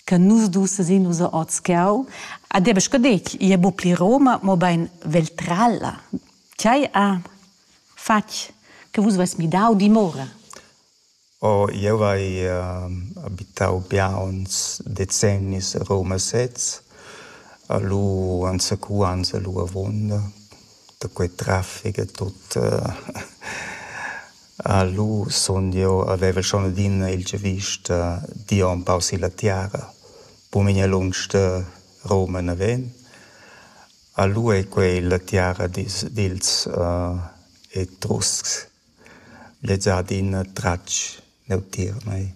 che nus dus sesin nus ò tscheu. Ad eba scadegl, i è bu pli Roma, mobein Veltralla. Tgei ha fatg che vus veis midau dimora? Oh, eu hai uh, abitau biauns decennis Roma sez, a lu anzacuans a lu avonda, da quei traffic e tot. Uh, Lu sun jeu avevel schon adina il giavüsch da dir empau silla tiara. Buc lunsch da Roma naven. A lu ei quei la tiara dils dils Etruscs. Lez ha adina tratg neutier a mei.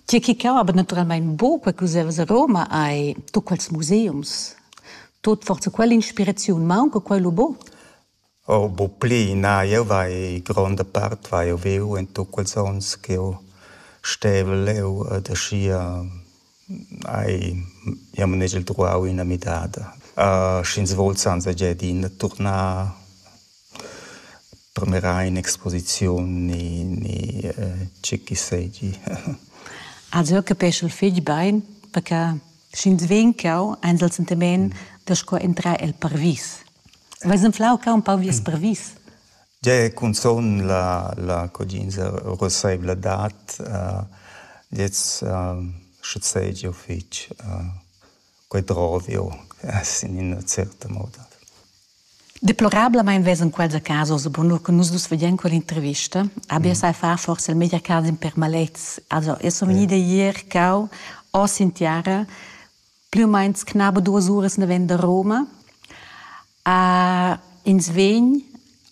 Tgi che cava naturalmein buca cuss'jeu a Roma ei tut quels museums. Tut forsa quell'inspiraziun maunca quei lu buc? Oh bucplü na, jeu vai gronda part vai jeu viu en tut quels onns ch'jeu stevel leu ed aschia hai jeu manegiel truau ina midada. sch'ins vul zanzagiar adina turnar premera in exposiziun ni ni tgi che seigi. Also jeu capeschel fetg bein perché Sch'ins vegn cau, eins el sentiment da sco entrar el parvis. Veis enflau cau un pau vies mm. parvis? Ge cunzun la, la codinza roseivla dat, uh, jetzt uh, sche sei giu fitg uh, quei drovio, in ina certa moda. Deplorablamein vesan quels a casa oz bunur che nus dus veglien quell'intervista. Abbia sai far forse il media casa in permalets. Also, io sono vegnida ier cau oss in tiara, più o meno knaba duas uras ne venda Roma. Uh, ins vegn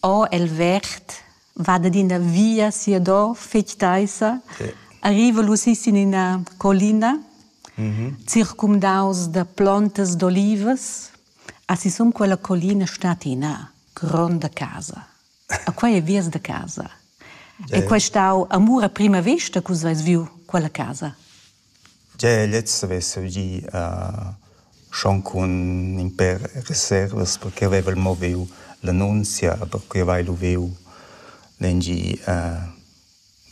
o el vert va ad ina via sia do fetg teissa, arriva lu sis in ina collina, circumdaus da plontas d'olivas, Ha sisum quella collina stat ina gronda casa. A quei ei vias da casa. E quei stau amur a prima vesta che vus veis viu quella casa. Tgei lezza vesa gì uh, schon cun in per reservas perché aveva moviu l'annunzia perché aveva lu viu lengi uh,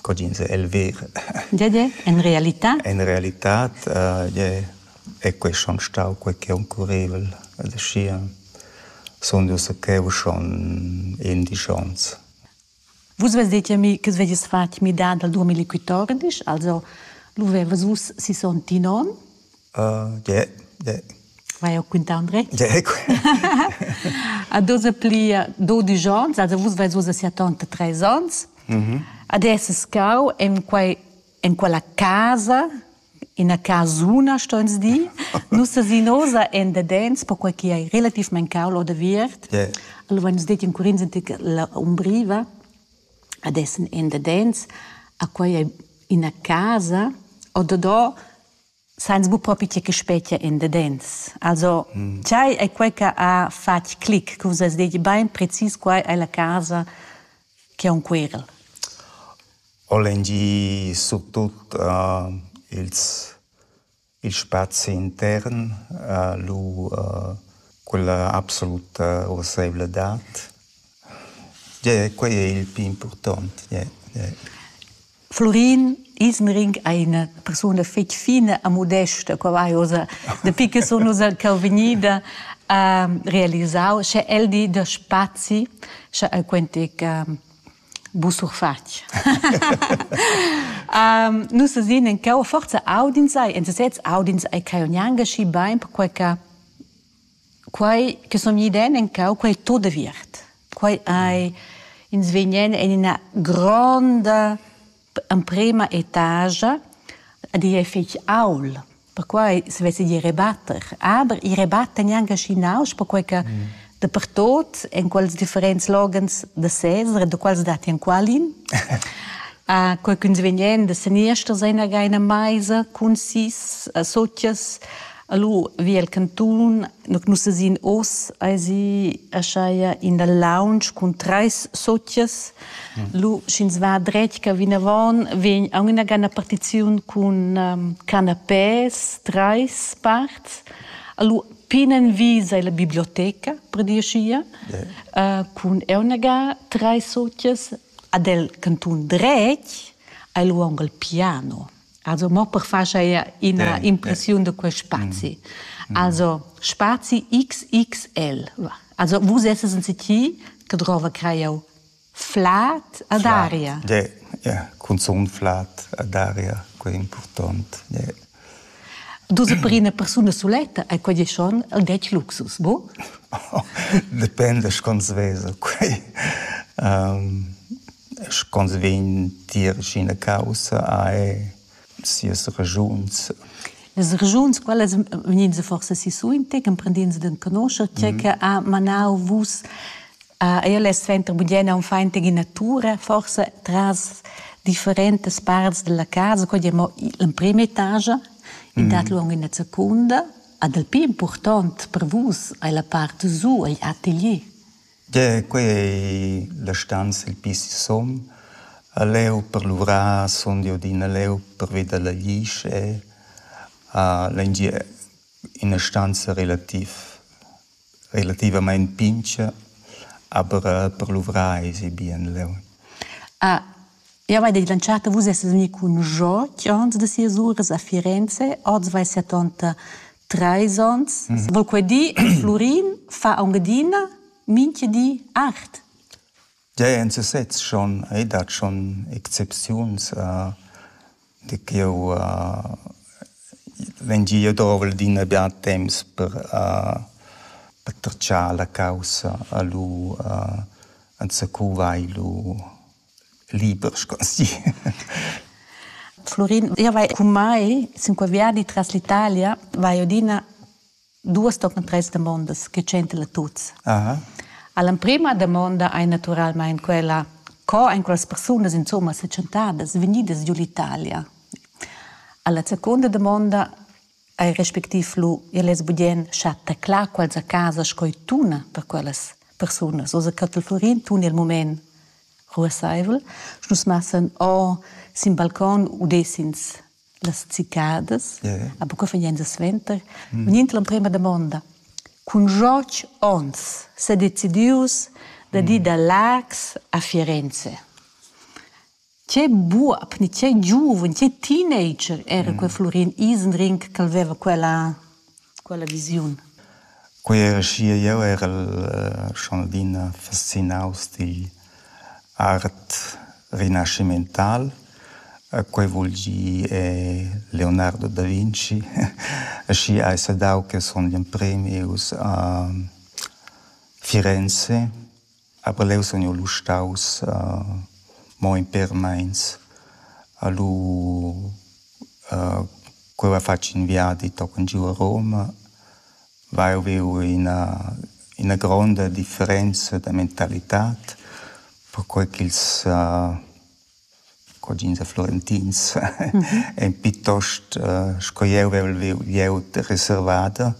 Cogins è el ver. Gie, gie, en realità? En realità è quei schon stau quei che oncurrevel. Aschia sun dus cheu schon indisch onns. Vus vezdete mi che vedies fatg midada al 2014, also lu vevas vus sisontinon Ie, ie. Vai ho quintà Andret? Ie, A doza pli dodisch ons, also vus vais ussa sia tanta tres ons. Adesso scau en quai en quella casa, ina casuna stoins dir. Nus sesinosa en dadens, perquai chi ei relativmaing caul oder viert. Ie. Allura nus detti in curins antic la umbriva, adessen en dadens, a quai ei ina casa, o dadò Sainz buc propi tgei che spetga endadens. Also, tgei ei quei che ha fatg clic, che vus has detg bein precis quai ei la casa che ha un querel? Holangi surtut uh, ils, il spazi intern, uh, lu uh, quella absoluta urseivladad. Yeah, quei è il pli important. Yeah, yeah. Florin Ismering è ina persuna fitg fina e modesta, qua vai ossa, dapi che sun ussa ch'el vegnida uh, realisau, sche el di da spazi, sche el quentic uh, busurfatg. um, nus sin en cau forza audins ai, en sesez audins ai caionianga schi bain, per quel che Quai che sun gnü iden encau, quai è tut aviert. Quai ei, ins vegn en ina gronda emprema etagia a dir fetg aul, perquai se vess dir rebatter. Aber i rebatta gnanca schi nausch, perquai che dapertut, en quels differents loghens da sezar, da quals datti enqualin, quai ch'ins vegn da seniester sein aga ina meisa cun sis sutgas, Allura vi el cantun, nus esin oz eisi ascheia in dal lounge cun treis sozias. Lu sch'ins va dretg ca vinavon, vegn aunc ina gana partiziun cun um, canapés, treis parts. Allura pinnenvi sei la biblioteca, per dir schia, uh, cun eunaga treis sozias. Ad el cantun dretg hai lu aunc il piano. Also mo per far ina yeah, impressiun yeah. da quel spazi. Mm. Also spazi XXL. Also vous esses in City che trova creo flat ad aria. Yeah, yeah. Cunzun flat ad aria, quel è important. Yeah. Dus per una persona soletta è quel schon un det luxus, bo? Dipende, schon svesa. Um, sch'ons vegn tier sch'ina caussa ha sias raschuns. Las raschuns, quellas vegnins forsa sisuinte, ch'emprendins d'enconoscher tgei che ha manau vus. Io less suenter bugen unfein tig ina tura, forsa tras differentas parts della casa, quei è mo l'emprema etagia, in dat luong ina secunda. Ad el pli impurtont per vus ei la part giu, igl atelier. Da quei ei la stanza il pli sisum. A leu per luvrar sun jeu adina leu pervi dalla glisch e a l'engier ina stanza relativ relativamein pintga, aber per luvrar esi bien leu. Jau hai declerantà che Vus essas vegnì cun Jörg onns da sias uras a Firenze. Oz vai setanta trais onns. Vol quai dir che Flurin fa aunc adina mintga di art? Ja, en sesez schon. Ei dat schon excepziuns. Uh, de ch'jeu uh, vegn gie dovel d'ina bia temps per, uh, per tracciar la caussa a lu, uh, enzacu vai lu liber scosi. Florin, io vai con mai cinque viadi tras l'Italia, vai adina duas tochen tres demondas che centra tuts. Aha. All'emprima domanda hai naturalmente quella co ein quelles persunas insomma se chantadas vegnidas giù l'Italia. Alla seconda domanda Ei respectiv lu igl less bugien schar teclar quels a casa sco ei tuna per quellas persunas. Oz a Catel Florin tuna il mument ruasseivel. Nus massan o sin balcon udessins las cicadas, a buca vegnend suenter. Vegnind l'emprema damonda, cun schotg onns sedecidius da dir da Laax a Firenze. Tgei buob ni tgei giuven, tgei teenager era quei Flurin Isenring ch'el veva quella, quella visiun? Quei era schia, jeu erel schon adina fascinaus digl art rinascimental. Quei vul dir Leonardo da Vinci. Aschia hai saidau che sun gl'emprem ius a Firenze Aber leu sun jeu lu staus mo in pêr meins a lu ch'jeu hai fatg in viadi tochen giu a Roma, vai e viu ina ina gronda differenza da mentalitad perquei ch'ils cugins e florentins ein piuttost sco jeu vevel viu glieud reservada.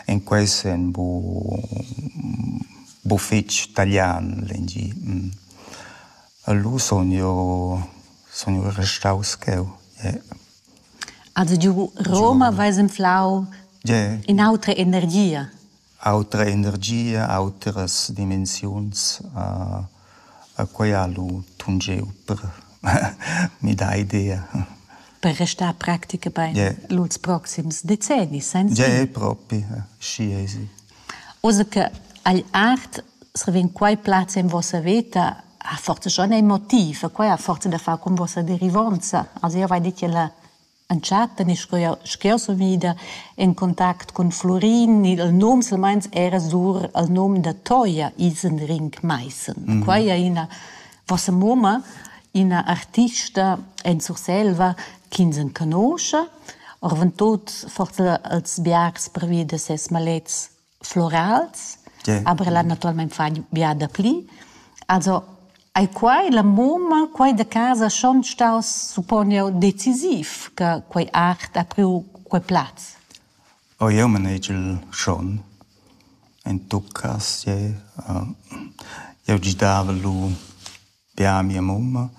En quei senn bu bu fetg talian l'engi. Lu sun jeu sun jeu restaus cheu. Also giu Roma veis inflau in'autra energia. Autra energia, autras dimensiuns. quai ha lu tungeu per midar idea. Per restar practica bein lur proxims decennis senza? Gie, propi, schi ei si. Oz che agl art srevegn quei plaz en vossa veta, ha forsa schon ein motiv, e quei ha forsa da far cun vossa derivonza. Also jeu vai dir che la Entschatta ni sco jau, sch'jeu sun ida en contact cun Flurin, il num silmeins era sur il num da Toja Isenring Maissen. Mm. Quai è ina, vossa mumma, ina artista en Surselva ch'ins enconosce, orventut forse als biars pervi da ses malets florals, yeah. aber ella naturalmein fagn bia dapli. Also ei quai la mumma, quai da casa schon staus supponiu decisiv che quei art ha priu quei plaz? O oh, eu manage il schon. In tuccas, yeah. Uh, eu gidava lu Pià a mia mumma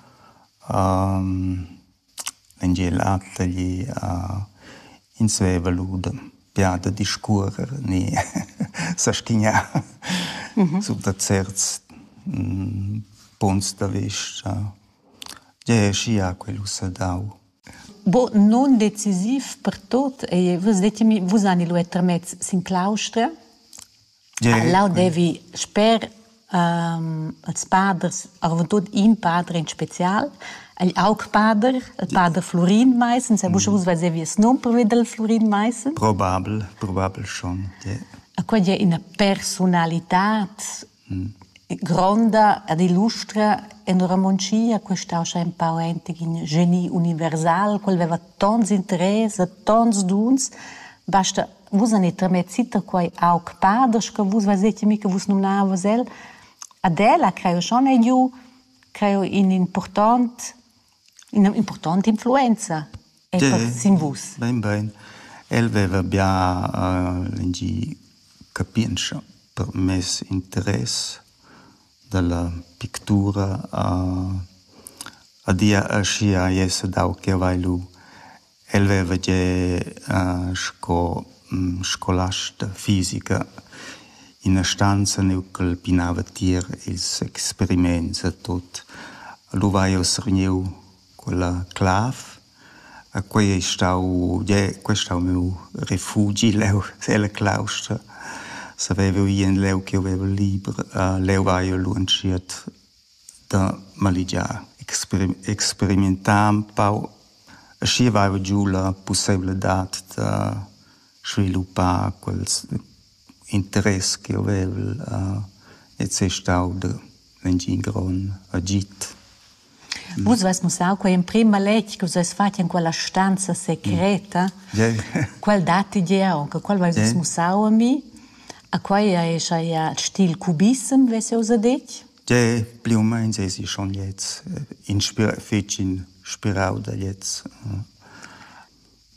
l'Engiel ha tagli ins veva lura pià da discuorrer ni sastignar sur da certs punts da vista. Tgei ei schia quel ussa dau? Bo nundecisiv per tot ei, vus detg mi, vus hani lu era termez sin claustra? Leu devi sper ils paders, arventut in pader in special, igl augpader, il pader Flurin Maissen, sa buca uss vesevi il num pervi dal Flurin Maissen. Probabel, probabel schon, ja. Quella è ina personalitad gronda ed illustra en Romontschia, questa uscia un pau entig in geni universal, quel veva tons interess, tons duns, basta Vus anit tramet sita quai aug paders che vus vezeti mi che vus numnavas el. Ad el ha creo schon ei giu creo in important ina importante influenza e sin vus. Bein bein. El veva bia uh, capientscha per mes interess dalla pictura uh, adia aschia ei dau che vai lu El veva gia sco scolasta fisica ina stanza neu ch'el pinava tier ils experiments e tut. Lu vai uss vegniu quella clav e quei ei stau gie quei ei stau miu refugi leu ella claustra. Saveva ì en leu ch'jeu veva liber. Leu vai jeu lu entschiet da maligiar, experimentar empau e schi vaiva giu la pusseivladad da sviluppar quels interess ch'jeu vevel et sei stau da mintgin grond agid. Vus vus mussau quei emprim maletg che vus veis fatg en quella stanza secreta. Quel datti jeu, che quel veis vus mussau a mi. A quei ei schai il stil cubissem, vess jeu ussa detg. Tgè pli u meins esi schon gliez fetg inspirau da gliez.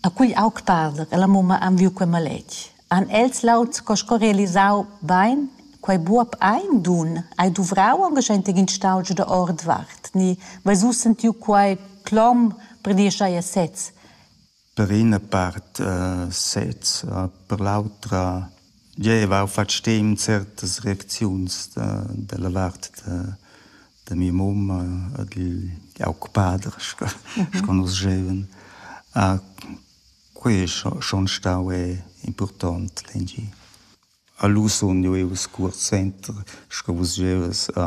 A quegl aug pader e la mumma han viu quei maletg. Han els laud sco sco realisau bein quei buob ein dun, hai duvrau angaschentig in stau giu da ordvart ni veis uss sentiu quei clom brenischai a sez. Per ina part sez, per l'autra giaiva eu fat stim certas reacziuns da della vart da da mia mumma e digl aug pader sco sco nus gievan. Quai es schon stau impurtant lengi. A lu sun eu i'l scuors center sco vus gievas a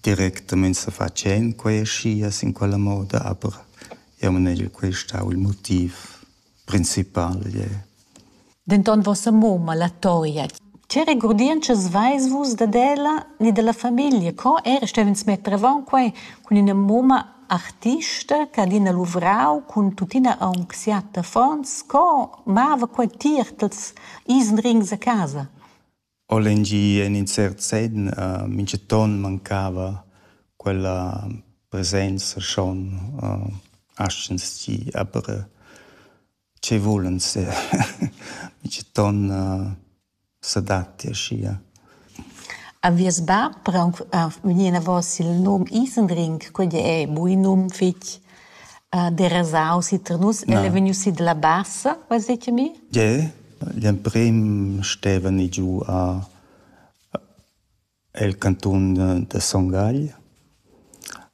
Directamein sefatschend quei aschia sin quella moda, aber jeu manegel quei stau il motiv principal gliez. Denton vossa mumma, la Toria, tge regurdientschas veis vus dad ella ni dalla famiglia? Co era stev'ins metter avon quei cun ina mumma artista che adina luvrau cun tuttina aunc siat affons? Co mava quei tier tals isenrings a casa? O lengi en in cert senn minchaton mancava quella presenza schon aschens tgi aber che vulens minchaton s'adatti aschia. A vies bab per aunc vegnir enavos il num Isendrink, quei è buin num fetg derasau si tar nus. El è vegniu si dalla Bassa, veis detg a mi? Gie. Gl'emprem stevani giu a el cantun da Son Gagl.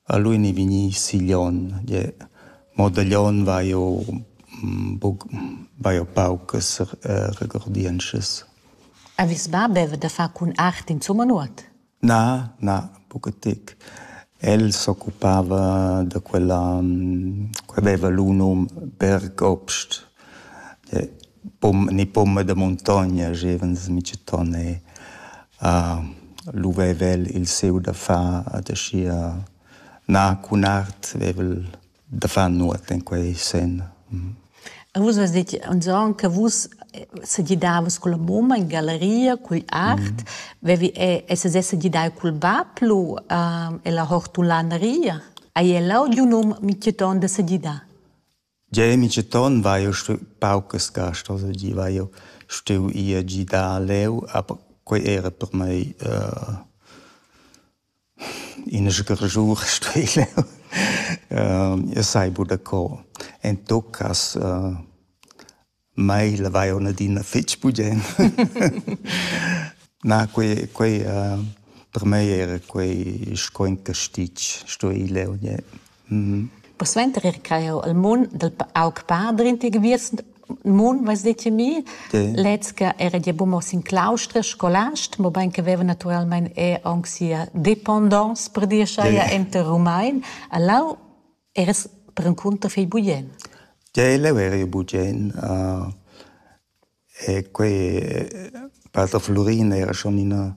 A lu ei vegni Siglion. Gie, mo da Glion vai jeu buc, vai jeu paucas regordientschas. Avis bab haveva da far cun art insumma nuot? Na, na, buca tec. El s'occupava da quella che veva lu num Bergobst, ni pumma da muntogna gevans micetton e lu veva el il siu da far ad aschia na cun art veva el da far nuot in quei sen. E vus has detg anzon che vus se gidavas con la mumma in galleria cul art, vevi e se se gidai cul bab lu e la hortulaneria. Hai el lau di un um miceton da se gidar? Ge miceton vai io stu paucas gast, also gi vai io stu ia gidar leu, aber quei era per mei uh, Ina sgarschur stuei jeu. Jeu sai buca co. En tot cass mai lavai aunc adina fetg bugen. Na, quei quei per mei era quei sco in castig, stuei leu gnir. Persuenter era quai jau al mun dal aug padrin ti geviers mun, vais dir ti mi. Lez che era gia buca mo sin claustra scolast, mobein che veva naturalmein er aunc sia dependance per dir schai enter Rumein. E lau eras perencunter fei bugen. Jeu leu eri bugen. Uh, e quei eh, Pater Flurina era schon ina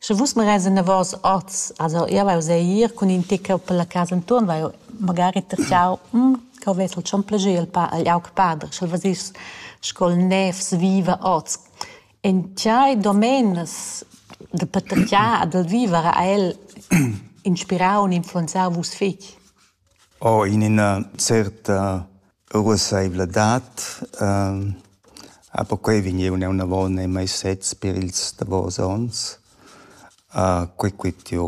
Sche vus magari enavos oz, also jeu vai uss ir cun in tec per la casa entuorn, vai magari tertgau, cheu vess el schon plascher il pa- igl aug pader, sch'el vesess sco'l nevs viva oz. En tgei domenas da patertgar e dal viver ha el inspirau u influenzau vus fetg? Ho in üna certa ruossaivladad, a perquai vegneun eau inavo nei meis sets per ils davos ons. Quai quist jo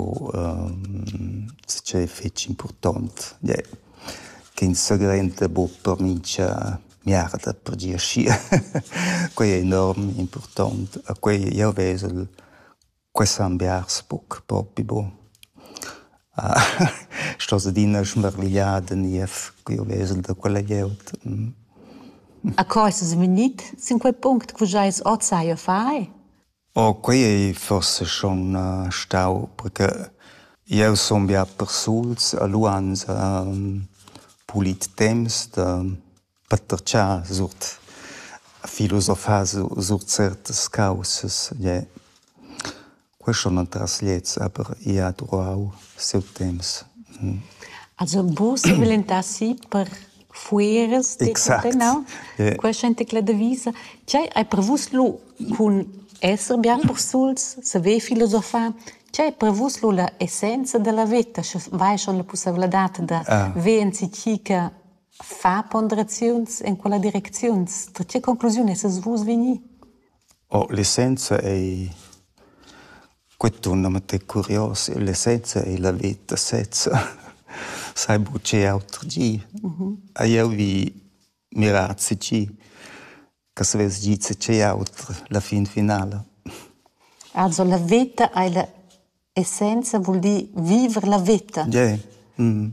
tschè fich important, yeah, ch'ins s'agrenta be per mincha miarda per gir schi. Quai è enorm important, a quai jau vezel Quest han biars buc propi buc. Stos adina schmarvigliar da niev ch'jeu vesel da quella glieud. A co eis vus vegnit sin quei punct che vus eis oz sai a far? Oh, quei ei forse schon stau, perché jeu sun bia persuls e lu ans pulit temps da Peter Tscha suot filosofar su suot certas caussas, gie. Questo non tras gliez, aber i ha durau siu temps. Also vus volentasi per fueras de exact. no? Yeah. Questa è la devisa. C'è è per vus lo con essere bien persuls, saver filosofar, c'è per vus lo la essenza della vita, se vai schon la possibilità da ah. vensi cica Far ponderaziuns en quella direcziuns, da tge conclusiun essas vus vegni? Oh, l'essenza ei quei tournament è curios. L'essenza ei la veta sezza. Sai buca auter gi. Hai jeu vi mirar tgi che savess gir tgi auter la fin finala. Also la veta ei la essenza vul dir viver la veta. Yeah. Mm.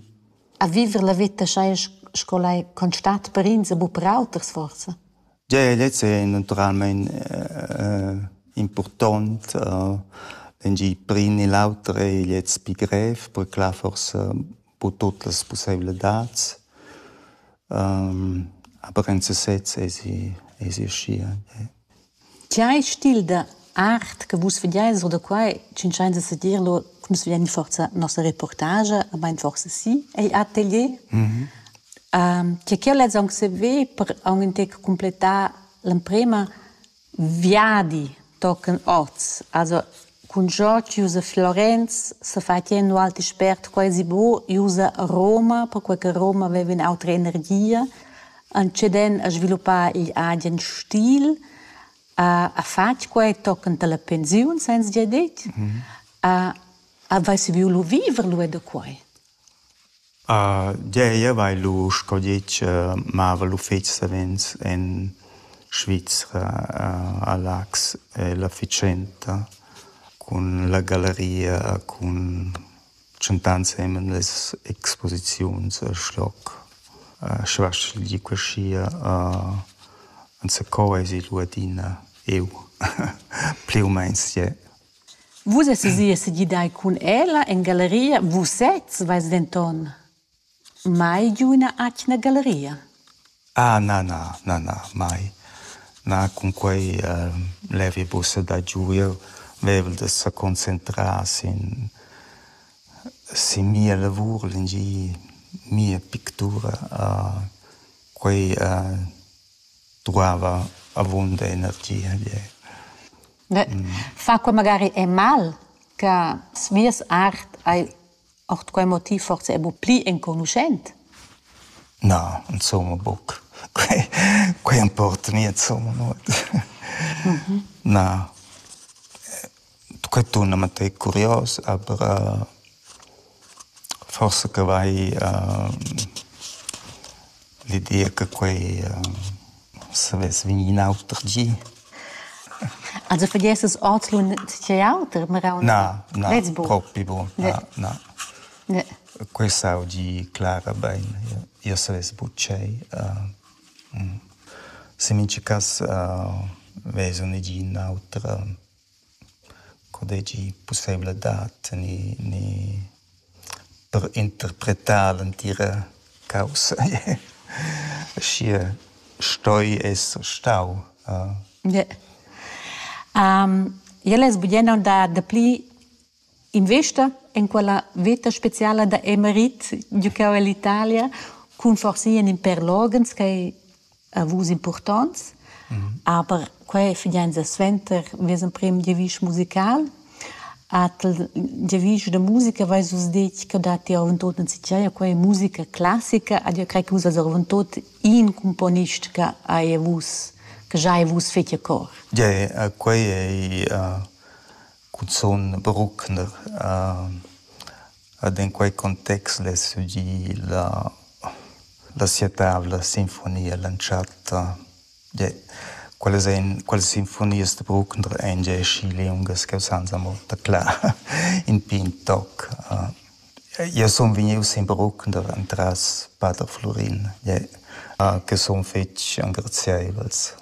A viver la veta schai sco lai constat per ins bu per auters forsa. Yeah, lez è naturalmente uh, important. Uh, Engi prin e l'auter è lez pi grev, perché là forse bu tutte le possibilità. Um, aber in sesez è si, è si scia. Yeah. Tgei stil da art che vus vegiais or da quai tschintschains a sedir lò, nus vegian forsa nossa reportagia, a mein forsa sì, ei atelier. tgei ch'jeu lez aunc saver per aunc in tec cumplettar l'emprema viadi tochen oz. Also Cun cho chi usa Florenz s'ha fat gnir ün'ual expert quasi bo i usa Roma, perquai che Roma vaiva ün'autra energia, antscheden a sviluppar igl agen stil, ha fat quai tochend a la pensiun, sainza dir dit, ha vaiva savieu lu viver lu e da quai. Gei, jeu vai lu sco ditg mava l'uffeci savens en Svizra a Laax e la fatschenta cun la galleria cun tschentà ensemen las exposiziuns a Schlock. Sche vas ch'el di quesia enzacò eisi lu adina eu pli u meins jeu. Vus essas ì e segidai cun ella en galleria. Vus sezs veis denton mai giu ina atgna galleria. Ah na na na na mai. Na cunquei uh, levi buca da giu. Jeu vevel da seconcentrar sin sin mia lavur, lingir mia pictura. Uh, quei uh, dueva avunda energia. Fa quei magari è mal che svies art hai ord quei motiv forse è bu pli enconuschent? Na, insomma buc. Quei, quei importa nie insomma nuot. Mhm. Na. Quei tuna mantei curios, aber uh, Forsa che vai l'ideia che quei savess vegnir in auter gi. Also vergiessas ordlun tgei auter meraun? Na, na, propi buc. Na, na. Quei saudi Clara bein. Jeu savess buc tgei. Se mincha cass vesu negin auter. co deigi pusseivel-adad tener ni per interpretar l'entira caussa schi stoi esser stau. Jel es bugen aunc da dapli Investa en quella veta speciala da Emerit giu cheu ell'Italia cun forsa in in pèr loghens ch'ei a vus impurtonts, aber quei figiainsa suenter vies emprem giavisch musical. Atel giavisch da musica veis vus detg che dat ti avontot enzatgei a quei musica classica, ad io crei che vus eis avontot in cumponist che ei a vus, che giai a vus fetg a cor. Gie, quei ei Cuzun bruckner. Ed in quei context less gir la la sia tavla sinfonia l'entschatta. Gie, quellas ein, quellas sinfonias da Bruckner ein gie aschi liungas ch'jeu sanza mo taclar in pign toc. Jeu sun vegnius sin Bruckner entras pater Flurin, gie, che sun fetg engraziaivels.